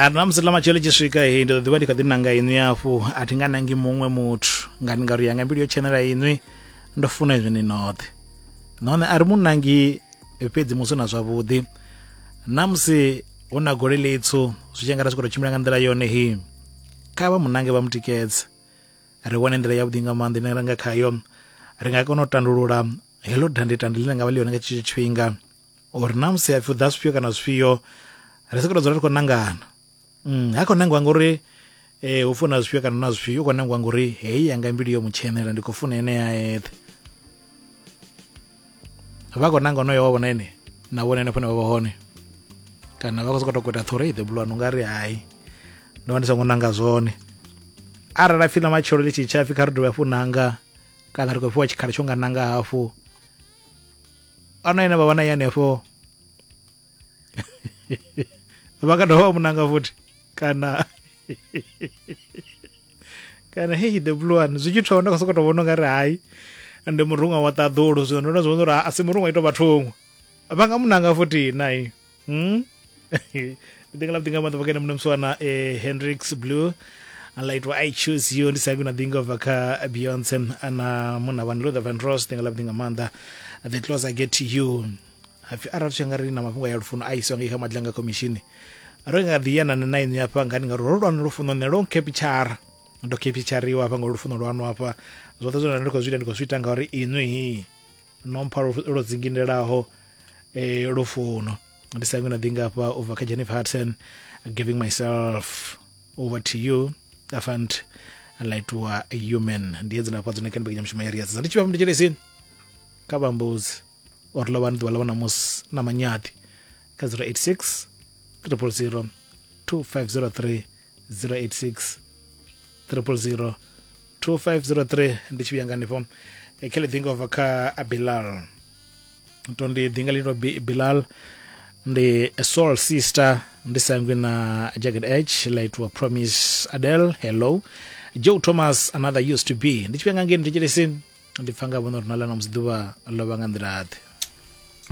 a na musi ḽa matshelo tshi swika he ndi ḓo ḓivha ndi kha ḓi nanga inwi afhu a thi nga nangi muṅwe muthu nga ndi ngauri yanga mbilu yo tshenela inwi ndo funa izwi ni noṱhe nahone a ri mu nangi fhedzi musi na zwavhuḓi na musi hu na gole ḽitswu zwi tshi nga ra swika to tshimbila nga nḓila yone hi kha vha munange vha mutikedze ri wane nḓila yavhuḓi nga maanḓa ine ra nga khayo ri nga kona u tandulula heḽo dandetande ḽine nga vha ḽi yone nga tshetsho tshifhinga or na musi hapfi u ḓa zwifhio kana zwifhio ri sokoto dzula ri khou nangana mm, ha khou nangiwa ngori eh, hu funa zwifhio kana na zwifhio u khou nangiwa ngori heyi yanga mbilu yo mutshenela ndi khou funa ene ya eṱhe vha khou nanga onoyo wa vhona ene na vhona ene fane vha vha hone kana vha khou sokoto kweta ṱhore the blue nga ri hayi ndo vha ndi songo nanga zwone arali a pfhi na matshelo ḽi tshi tsha pfhi kha ri dovhe hafhu nanga kana ri khou fhiwa tshikhala tsho nga nanga hafhu ana ine vha vha na i hanefho vha ka dovha vha mu nanga futhi kana kana heyi the blue one zwi tshi thoma nda khou sokou tou vhona ungari hayi ndi muruṅwa wa ṱaḓulu zwino ndo no zwi vhona uri a si muruṅwa ito vha thungo vha nga mu nanga futhi nai Hmm? ndi nga laṱinga maḓuvha kene muno muswana eh, hendrix blue alaitwa i choose you ndi saku na ḓinga ubva kha beyonce ana muna vhani luther van ross ndi nga laṱinga maanḓa the close i get to you hapfi arali tshi nga ri na mafhungo ya lufuno a iswa ngei kha madlanga khomishini ro nga ḓi yana na ini hafha ngani ngauri ro lwana lufuno ne lo nkepitshara ndo kepitshariwa hafha nga lufuno lwanu hafha zwoṱhe zwine nda ndi khou zwi ita ndi khou zwi ita ngauri inwi no mpha lwo dzingindelaho eh, lufuno ndi sa ngwina ḓi ngafha u bva kha jennifer hudson giving myself over to you afant laitiwa human ndi edzi nafha dzone kani bekanya mushumo ya riyazi ndi tshivha mnditshelesini kha vhambuzi or ḽa vhani ḓuvha ḽa vhona musi na manyaḓi kha 086 300 2503 086 000 2503 ndi tshi vhuya nga hanefho eh, khe ḽi ḓinga ubva kha abilal to ndi ḓinga ḽi to bilal ndi soul sister ndi sangwi na jacket h ḽa itiwa promise adel hello joe thomas another used to be ndi tshi vhuya nga ngei ndi thetshelesi ndi pfa nga vhono uri na ḽa na musi ḓuvha ḽo vha nga nḓila ḓe